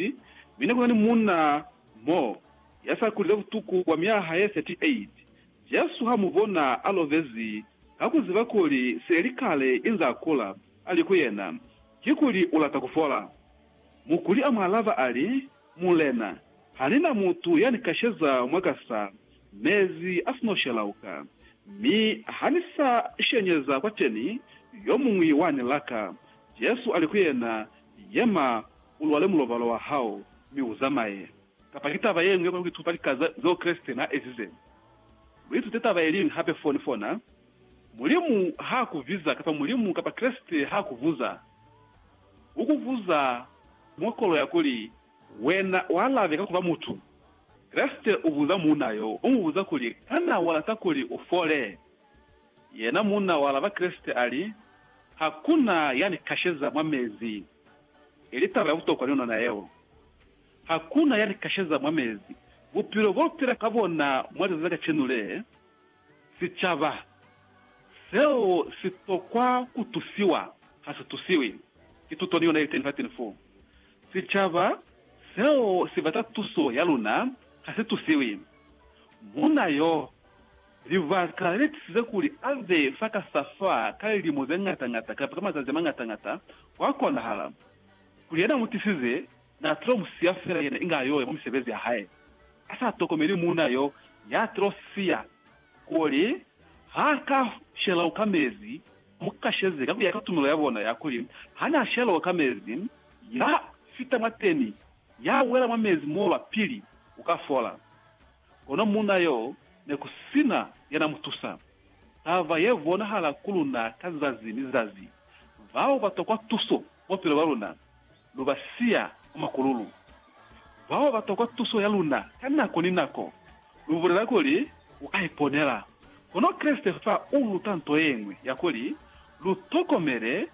Mufisi, mi ne ku na ni munna mo ya sa kulile butuku bwa myaha ye 38. Jesu ha mu bona, a lovezi ka ku ziba kuli se li kale inze a kula, a li ku yena, Kikuli u lata ku fola? Mukuli a mu alaba a li, Mulena, ha ni na mutu ya ni kasheza mwa ka sa, mezi a si no shelauka, mi ha ni sa shenyeza kwateni, yo muñwi wa ni laka. Jesu a li ku yena, Yema, Ulwale mulobalo wa hao, mi uzamaye. Kapa ki taba yeñwi ya kona kuituta lika zeo Kreste naa ezize? Luitute taba yeliñwi hape foni fona, Mulimu haa kubiza kapa Mulimu kapa Kreste haa kubuza. Ukubuza mwa kolo ya kuli, Wena ualabe ka kuba mutu. Kreste ubuza muuna yo, umubuza kuli, Kana walata kuli ufole? Yena munna wa laba Kreste ali, Hakuna ya ni kasheza mwa mezi. Ili taba ya butokwa ni nona yeo. Hakuna ya ni kasheza mwa mezi. Bupilo bo pila ka bona mwa lizazi la kacenu le, sicaba seo si tokwa ku tusiwa, ha si tusiwi. Ki tuto ni yona ili teni fateni fo. Sicaba seo si bata tuso ya luna, ha si tusiwi. Munna yo. Libaka le tisize kuli a be fa ka sa fa ka lilimo ze ñata-ñata kamba ka mazazi a mañata-ñata, kwa konahala kuli yena mu tisize n'a tilo mu siya fela yena inge a yo ya kwa misebezi ya hae, a sa tokomeli muuna y'o y'a tilo siya kuli ha ka shelwa ka mezi. Mu kasheze ka ku ya ka tumelo ya bona ya kuli ha n'a shelwa ka mezi, ya fita mwateni, ya wela mwa mezi moo lwa pili, u ka fola. Kono muuna yo ne ku sina ya na mu tusa. Taba ye bonahala ku luna ka zazi ni zazi. Bao ba tokwa tuso bupilo bwa luna, lu ba siya kwa makululu. Bao ba tokwa tuso ya luna ka nako ni nako, lu bulela kuli, U ka iponela. Kono Kreste fa u luta nto ye ñwi ya kuli, Lu tokomele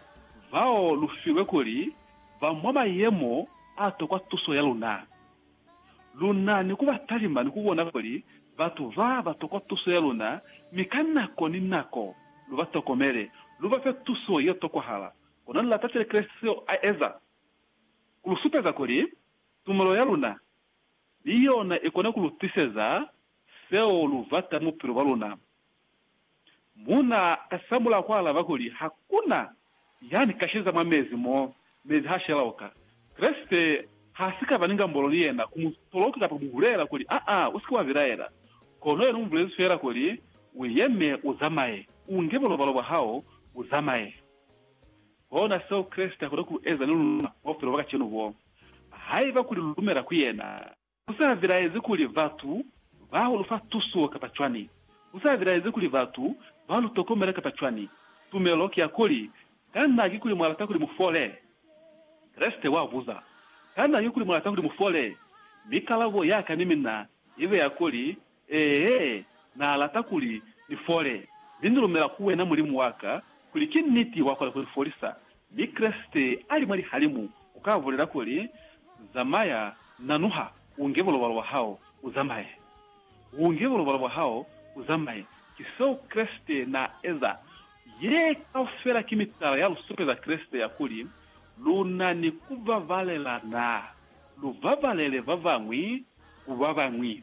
bao lu filwe kuli ba mwa mayemo a tokwa tuso ya luna. Lu na ni ku ba talima ni ku bona kuli batu ba ba tokwa tuso ya luna, mi ka nako ni nako lu ba tokomele, lu ba fe tuso ye tokwahala. Kona lu lata cwale Kreste seo a eza, ku lu supeza kuli tumelo ya luna ni yona i kona ku lu tiseza seo lu bata mu bupilo bwa luna. Mu na kasamula ku alaba kuli, Ha ku na ya ni kasheza mwa mezi mo, mezi ha shela oka. Kreste ha si ka ba ni ngambolo ni yena, ku mu toloka kapa ku mu bulela kuli, Aa, u si ke wa bilaela. Kono yena u mu bulezi fela kuli, U yeme, u zamaye, u nge bulobalo bwa hao, u zamaye. Kona seo Kreste a kona ku eza ni luna bwa bupilo bwa kacenu bo, haiba kuli lu lumela ku yena. Ku sa bilaezi kuli batu ba lu fa tuso kapa cwani, ku sa bilaezi kuli batu ba lu tokomela kapa cwani, tumelo ki ya kuli, Kana kikuli mwa lata kuli mu fole? Kreste wa buza, Kana kikuli mu lata kuli mu fole? Mi kalabo ya ka ni mina ibe ya kuli, Ee, Na lata kuli ni fole. Mi Ni lumela ku Wena, Mulimu wa ka, kuli ki niti Wa kona ku ni folisa. Mi Kreste a li mwa lihalimu, u ka bulela kuli, Zamaya, nanuha, u nge bulobalo bwa hao, u zamaye. U nge bulobalo bwa hao, u zamaye. Ki seo Kreste na eza. Ye kaufela ki mitala ya lu supeza Kreste ya kuli, Lu na ni ku babalelana. Lu babalele ba bañwi ku ba bañwi.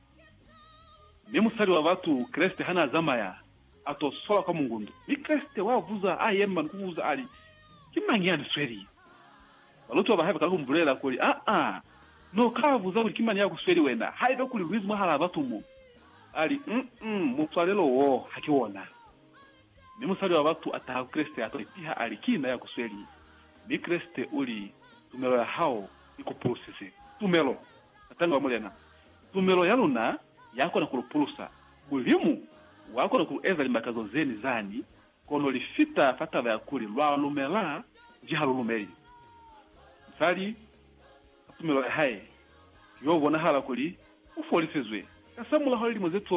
Mi musali wa batu, Kreste, ha n'a zamaya, a t'o swala kwa mungundu. Mi Kreste wa buza, a yema ni ku buza, a li, Ki mañi ya ni sweli? Balutiwa ba hae ba kala ku mu bulelela kuli, Aa, n'o ka buza kuli ki mani ya ku sweli wena, haiba kuli lu ize mwahal'a batu mo. A li, Um-um, muswalelo wo ha ki wona. Mi musali wa batu a taha ku Kreste, a t'o ipiha, a li, Ki na ya ku sweli. Mi Kreste u li, Tumelo ya hao i ku pulusize. Tumelo! Satani wa Mulena. Tumelo ya luna ya kona ku lu pulusa. Mulimu wa kona ku lu eza limakazo ze ni zani, kono li fita fa taba ya kuli lwa lumela nji ha lu lumeli. Musali, ka tumelo ya hae, ki yo bonahala kuli u folisizwe kasamulaho lilimo ze 12.